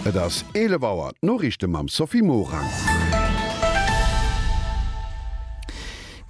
Et ass 11 Auer, d'Noriichte mam Sophie Morang.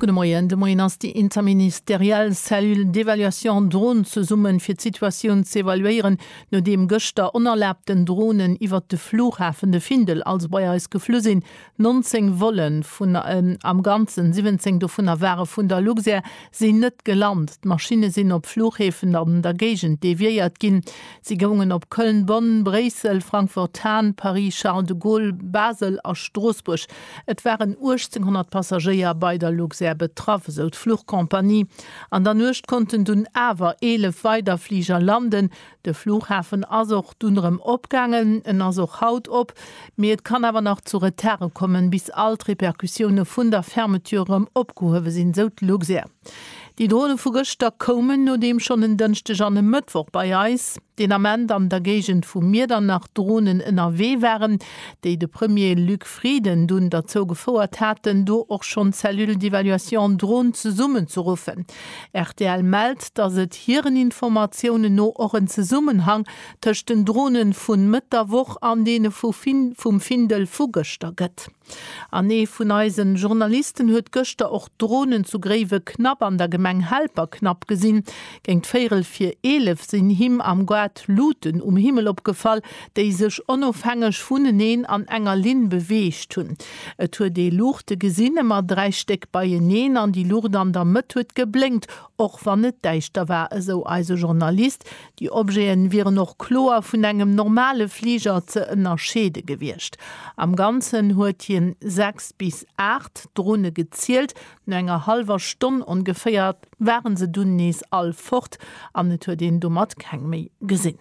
Gudde Moien. De Moien ass déi interministeriell Cellule d'évaluation Drones zesummen, fir d'Situatioun z'evaluéieren, nodeem gëschter onerlaabten Dronen iwwert de Flughafen de Findel, also bei eis, geflu sinn, 19 Vollen vun en am Ganzen 17 dovunner ware vun der Luxair sinn net gelant. D'Maschinne sinn op Fluchhäfen an der Géigend deviéiert ginn. Si goungen op Köln, Bonn, Bréissel, Frankfurt Hahn, Paris Charles de Gaulle, Basel a Stroossbuerg. Et waren 1.800 Passagéier bei der Luxair betraff, esou d'Fluchcompagnie. An der Nuecht konnten dunn awer 11 weider Fliger landen. De Flughafen ass och dunn erëm opgaangen, en ass och haut op, mee et kann awer nach zu Retarde kommen, bis all d'Repercussioune vun der Fermeture erëm opgehuewe sinn, sou d'Luxair. Déi Drone vu gëschter koumen nodeem schonn en Dënschdeg an e Mëttwoch bei eis, den Ament an der Géigend vu Miedernach, Dronen ënnerwee waren, déi de Premier Luc Frieden dunn derzou gefouert haten, do och schonn d'Cellule d'évaluation Drone zesummenzerruffen. Rtl mellt, datt et hiren Informatiounen no och en Zesummenhang tëscht den Drone vun Mëtt der Woch an deene vum Findel vu gëschter gëtt. An ee vun eisen Journalisten huet gëschter och Dronen zu Gréiweknapp an der Gemeng Helperknapp gesinn. Géint véierel vir 11 sinn him am Goart Luuten um Himmel opgefall, déi sech onofhängeg vuneneen an enger Linn beweegt hunn. Et huet ee Luuchte gesinn, ëmmer dräi Stéck beieneen, an déi Luucht an der Mëtt huet geblénkt, och wann et däischter war, esou eise Journalist. Déi Objete wieren och kloer vun engem normale Fliger ze ënnerscheede gewiescht. Am Ganzen huet hien sechs bis aacht Drone gezielt. No enger hallwer Stonn ongeféier ware se dunn nees all fort an et huet een domat keng méi gesinn.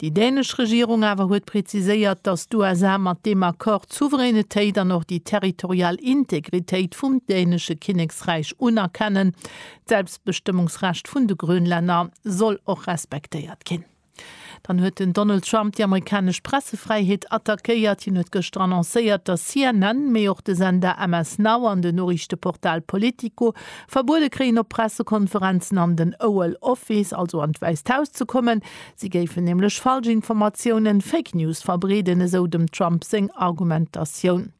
Déi dänesch Regierung awer huet preziséiert, datt d'USA mat deem Accord d'Souveränitéit an och déi territorial Integritéit vum dänesche Kinneksräich unerkennen. D'Selbstbestëmmungsrecht vun de Grönlänner soll och respektéiert ginn. Dann huet den Donald Trump déi amerikanesch Pressefräiheet attackéiert. Hien huet gëschter annoncéiert, datt CNN, mee och de Sender MS Now an den Noriichteportal Politico verbuede kréien op Pressekonferenzen an den Oval Office, also an d'Wäisst Haus ze kommen. Si géifen nämlech Falschinformatiounen, Fake News, verbreeden, esou dem Trump seng Argumentatioun.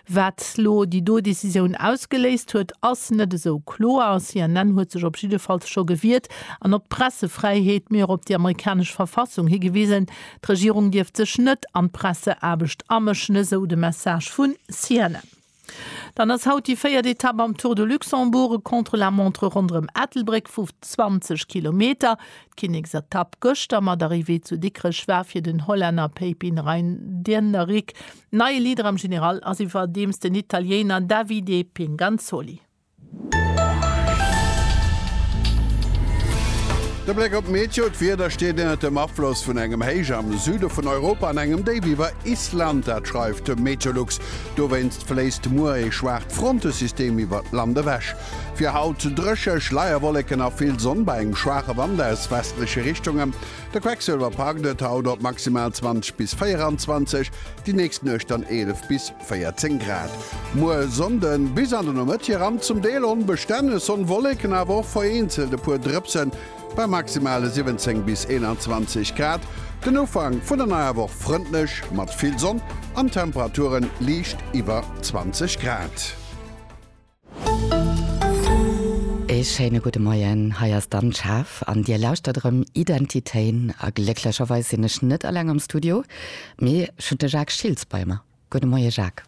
Wat lo déi do Decisioun ausgeléist huet, ass net esou kloer. CNN huet sech op jiddefalls scho gewiert an op d'Pressefräiheet, mee och op déi amerikanesch Verfassung higewisen. D'Regierung dierft sech net an d'Presseaarbecht amëschen, esou de Message vu CNN. Dann ass haut déi véiert Etapp am Tour de Luxembourg, e Contre-la-montre ronderëm Ettelbréck vu 20 Kilometer. D'Kinneksetapp gëschter mat Arrivée zu Dikrech war fir den Hollänner Pepijn Reijnderenrick neie Leader am General, ass iwwerdeems den Italiener Davide Pinganzoli. De Bléck op d'Meteo, D'Wieder steet ënnert dem Afloss vun engem Héich am Süde vun Europa an engem Déif iwwer Island. Dat schreift de Meteolux. Dowéinst fléisst muer ee schwaacht Frontesystem iwwert d'Land ewech. Fir haut dréche, Schleierwolleken a vill Sonn bei engem schwaache Wand aus westleche Richtungen. De Quecksëlwer packt et haut op maximal 20 bis 24, déi nächst Nuecht dann 11 bis. 14 Grad. Muer Sonnden bis an de Nomëtt hier an zum Deel onbestänneg Sonn, Wolleken awer och vereenzelt e puer Drëpsen bei maximale 17 bis 21 Grad. Den Ufank vun der neier Woch frëndlech mat vill Sonn an Temperaturen liicht iwwer 20 Grad. Ee schéine gudde Moien, hei ass d'Anne Schaaf an Dir lauschtert erëm Identitéen a glécklecherweis sinn ech net alleng am Studio, mee ech hunn de Jacques Schiltz bei mer. Gudde Moie Jacques.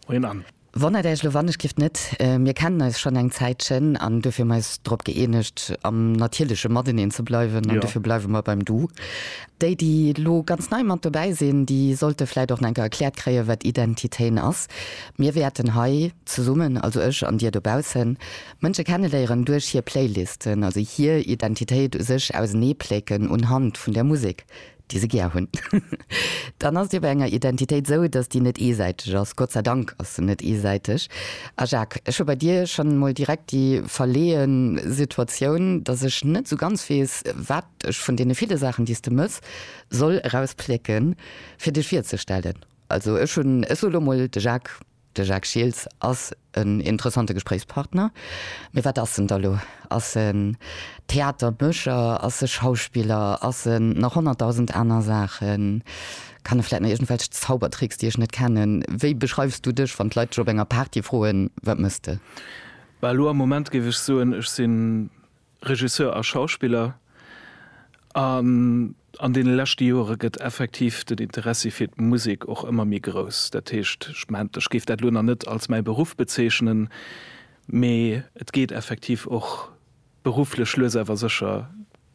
Moien Anne. Wonnert Äech elo wann ech giff net, mir kennen eis schonn eng Zäitchen an duerfir hunn mer eis drop gëeenegt am natierleche Mateneen ze bleiwen an duerfir bleiwe mer beim Du. Déi déi elo ganz nei mat dobäi sinn, déi sollte vläit och nach eng Kéier erkläert kréien, wat Identitéen ass. Mir wäerten hei. Zesummen, also ech an dir dobaussen, Mënsche kenneléieren duerch hir Playlisten, also hir Identitéit u sech auseneeplécken unhand vun der Musek, déi se gär hunn. Dann ass et jo bei enger Identitéit esou, datt déi net eesäiteg ass. Gott sei Dank ass se net eesäiteg. A Jacques, ech hu bei dir schonn emol direkt déi verleeë Situatioun, datt ech net esou ganz weess, wat ech vun deene ville Saachen, déi s de mëss, soll erausplécken, fir dech virzestellen. Also ech hunn, ech soe lo mol, de Jacques. De Jacques Schiltz ass en interessante Gespréichspartner. Mee wat ass en da lo? Ass e Theatermécher? Ass e Schauspiller? Ass e nach honnertdausend aner Saachen? Kann e vläit nach iergendwelch Zaubertricks, déi ech net kennen? Wéi beschreifs du dech, wann d'Leit dech op enger Party froen, wat méchs de? Bah, elo am Moment géif ech soen, ech sinn Regisseur a Schauspiller, an an deene leschte Jore gëtt effektiv den Interessi fir d'Musek och ëmmer méi grouss. Dat heescht, ech mengt, ech géif dat elo nach net als mäi Beruff bezeechnen, mee et geet effektiv och berufflech lues awer sécher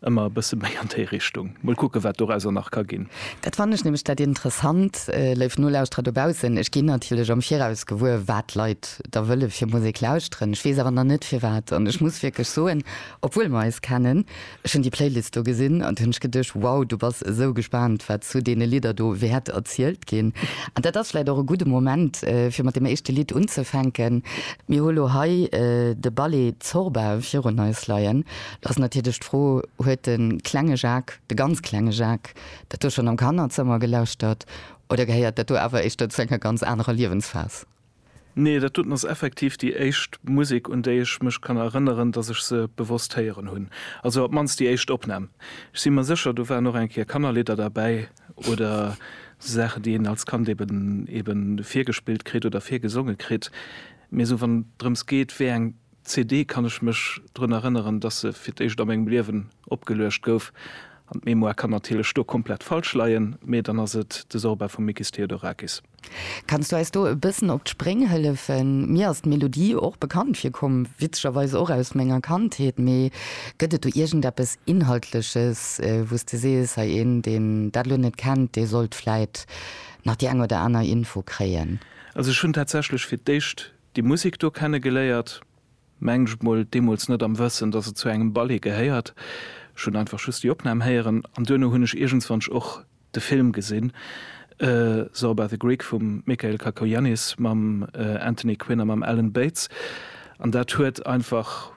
ëmmer e bësse méi an déi Richtung. Mol kucke wat dorauser nach ka ginn. Dat fannen ech nämlech dat Interessant, léif Nolauschterer dobaussen, ech ginn natierlech am Viraus gewuer, wat d'Leit da wëll e fir Musek lauschteren, ech weess awer nach net firwat, an ech muss wierklech soen, obwuel mer eis kennen, ech hunn déi Playlist do gesinn an du hunn ech geduecht, wow, du bass esou gespaant, wat zu deene Lidder do wäert erzielt ginn. An dat ass vläicht och e gudde Moment, fir mat deem éischte Lidd unzefänken. Mir hu lo hei de Ballet Zorba virun eis leien. Lo ass natierlech d'Fro, Huet de klenge Jacques, de ganz klenge Jacques, dat do schonn am Kannerzëmmer gelauschtert oder gehéiert dat do awer éischter zu enger ganz anerer Liewensphas? Nee, dat doten ass effektiv déi éischt Musek, un déi ech mech kann erënneren, dass ech se bewosst héieren hunn. Also op d'mannst déi éischt Opnam. Ech si mer sécher, do waren och eng Kéier Kannerlidder derbäi oder sou Saachen, déi een als Kand eben eben virgespillt kritt oder virgesonge kritt. Mee sou wann et drëms geet, wéi eng D'CD kann ech mech drun erënneren, dass se fir d'éischt a mengem Liewen opgeluecht gouf. An d'Mémoire kann natierlech do komplett falsch leien, mee dann ass et de Sorba vum Mikis Theodorakis. Kanns du eis do e bëssen op d'Spréng hëllefen? Mir ass d'Melodie och bekannt virkomm, witzegerweis och aus menger Kandheet. Mee gëtt et do iergendeppes Inhaltleches, wou s de sees, hei, een, deen dat elo net kennt, dee sollt vläit nach déi eng oder aner Info kréien? Also ech hunn tatsächlech fir d'éischt Déi Musek do kenne geléiert, mengen ech mol, deemools net am Wëssen, dass et zu engem Ballet gehéiert. Ech hunn einfach just déi Opnam héieren an duerno hunn ech iergendswannesch och de Film gesinn, Saw by the Greek vum Michael Cacoyannis mam Anthony Quinn a mam Alan Bates, an dat huet einfach.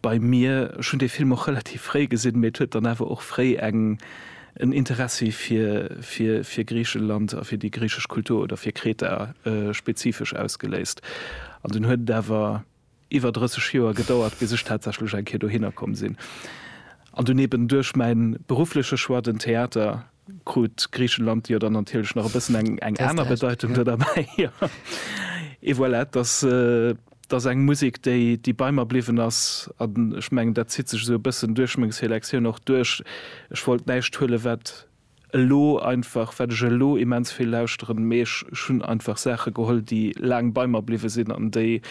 bei mir. Ech hunn dee Film och relativ fréi gesinn, mee et huet dann awer och fréi eng en Interessi fir fir fir Griicheland a fir déi griichesch Kultur oder fir Kreta spezifesch ausgeléist. An dunn huet et awer iwwer 30 Joer gedauert, bis ech tatsächlech eng Kéier dohinner komm sinn an dunn eben duerch mäin beruffleche Choix den Theater krut Griichenland jo dann natierlech nach e bëssen eng eng aner Bedeitung do derbäi. Jo, et voilà, et ass, et ass eng Musek, déi, déi bei mer bliwwen ass. An ech mengen, dat zitt sech esou e bëssen duerch meng Selektioun och duerch. Ech wollt näischt huelen, wat elo einfach, wat ech elo immens vill lauschteren, mee ech, ech hunn einfach Saache geholl, déi laang bei mer bliwwe sinn an déi,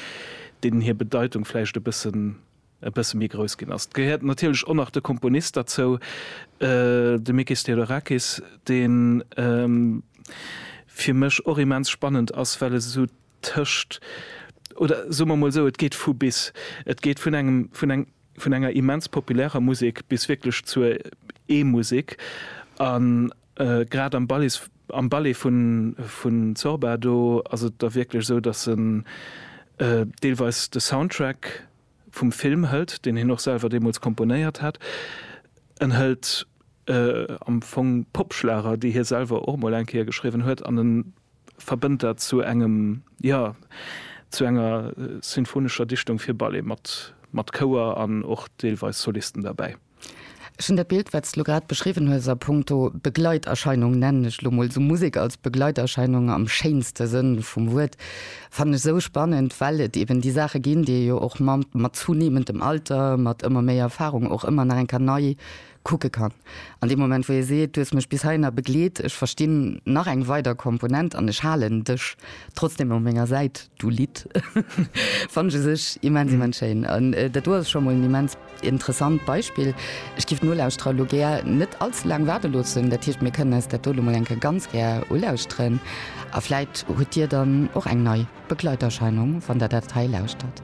deenen hir Bedeitung vläicht e bëssen, e bësse méi grouss ginn ass. Et gehéiert natierlech och nach de Komponist derzou, de Mikis Theodorakis, dee fir mech och immens spannend ass, well e sou tëscht, oder soe mer emol sou, et geet vu bis. Et geet vun engem, vun enger immens populärer Musek bis wierklech zur E-Musek. A grad am Ballet, am Ballet vun Zorba do ass et da wierklech esou, datt en deelweis de Soundtrack vum Film hëlt, deen hien och selwer deemools komponéiert hat. En hëlt am Fong Popschlager, déi hie selwer och emol eng Kéier geschriwwen huet an e verbënnt dat zu engem, jo, zu enger sinfonescher Dichtung fir Ballet mat Chouer an och deelweis Solisten derbäi. Ech hunn dat Bild, wat s de elo grad beschriwwen hues, a punkto Begleiterscheinung, nennen ech elo mol esou, Musek als Begleiterscheinung am schéinste Sënn vum Wuert, fannen ech esou spannend, well et eben déi Saache ginn, déi ee jo och mat zunehmendem Alter, mat ëmmer méi Erfarung och ëmmer nach eng Kéier nei kucke kann. An deem Moment, wou ee seet, du hues mech bis heihinner begleet, ech verstinn nach eng weider Komponent an ech halen dech trotzdeem op menger Säit, du Lidd, fannen ech u sech immens, immens schéin. An dat do ass scho mol en immens. Interessant Beispill. Ech giff d'Nolauschterer lo gär net allze laang waarde loossen, dat heescht, mir kënnen eis dat do lo mol eng Kéier ganz gär ulauschteren a vläit hutt Dir dann och eng nei Begleiterscheinung, wann Der dat hei lauschtert.